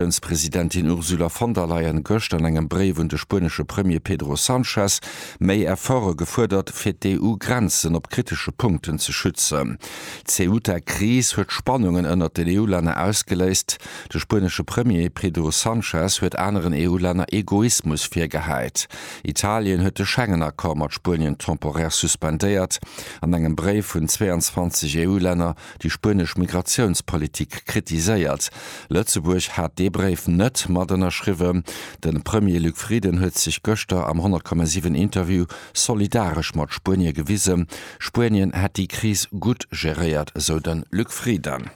D'Commissiounspresidentin Ursula von der Leyen gëscht an engem Bréif un de spuenesche Premier Pedro Sanchez méi Efforte gefuerdert, fir d'EU-Grenzen op kritesche Punkten ze schützen. D'Ceuta-Kris huet Spannungen ënnert den EU-Länner ausgeléist. De spuenesche Premier Pedro Sanchez huet aneren EU-Länner Egoismus virgehäit. Italien huet de Schengen-Accord mat Spuenien temporär suspendéiert. An engem Bréif vun 22 EU-Länner déi spuenesch Migratiounspolitik kritiséiert. Lëtzebuerg hat dee Bréif net mat ënnerschriwwen. De Premier Luc Frieden huet sech gëschter am 10,7 Interview solidaresch mat Spuenie gewise. Spuenien hätt déi Kris gutt geréiert, esou de Luc Frieden.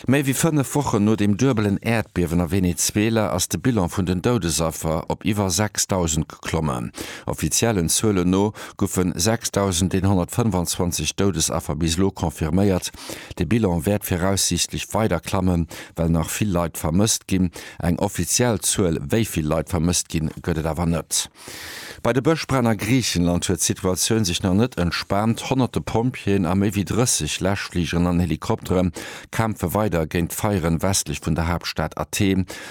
Méi wéi fënnef Wochen no dem duebelen Äerdbiewen a Venezuela ass de Bilan vun den Doudesaffer op iwwer 6.000. klommen. Offiziellen Zuelen no goufe 6.125 Doudesaffer bis elo confirméiert. De Bilan wäert viraussiichtlech weider klammen, well nach vill Leit vermësst ginn. Eng offiziell Zuel, wéi vill Leit vermësst ginn, gëtt et awer net. Bei de Bëschbränn a Griichenland huet d'Situatioun sech nach net entspaant. Honnerte Pompjeeën a méi wéi 30 Läschfligeren an Helikoptere kämpfe weider géint d'Feieren westlech vun der Haaptstad Athen.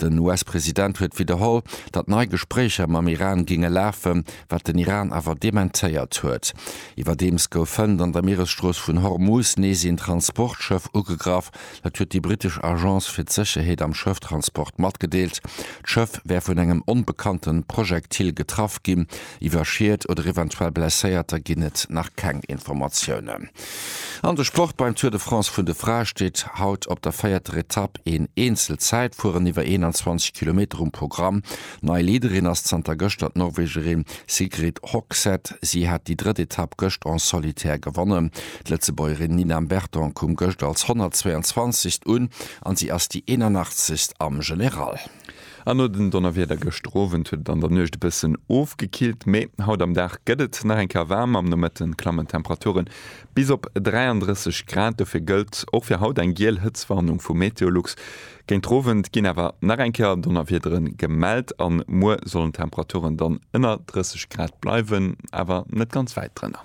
Den US-President huet widderholl, datt nei Gespréicher mam Iran géinge lafen, wat den Iran awer dementéiert huet. Iwwerdeems gouf Hënt an der Mieresstrooss vun Hormuz nees een Transportschëff ugegraff. Dat huet déi britesch Agence fir d'Sécherheet am Schëfftransport matgedeelt. D'Schëff wär vun engem onbekannte Projektil getraff ginn. Iwwer Schied oder eventuell Blesséierter ginn et nach keng Informatiounen. An de Sport, Beim Tour de France vun de Frae steet haut op der véierter Etapp een Eenzelzäitfueren iwwer 21 Kilometer um Programm. Nei Leaderin ass zanter gëschter d'Norwegerin Sigrid Hogseth. Si hat déi drëtt Etapp gëscht en solitaire gewonnen. D'Lëtzebuergerin Nina Mberton koum gëscht als 122. un an si ass déi 81. am General. An no den Donnerwieder gëschter Owend huet et an der Nuecht e bëssen ofgekillt, mee haut am Dag gëtt et nach eng Kéier waarm. Am Nomëtte klammen d'Temperature bis op 33 Grad. Dofir gëllt och fir haut eng giel Hëtztwarnung vu Meteolux. Géint Owend ginn awer nach eng Kéier Donnerwiedere gemellt a muer sollen d'Temperaturen dann ënner 30 Grad bleiwen, awer net ganz wäit drënner.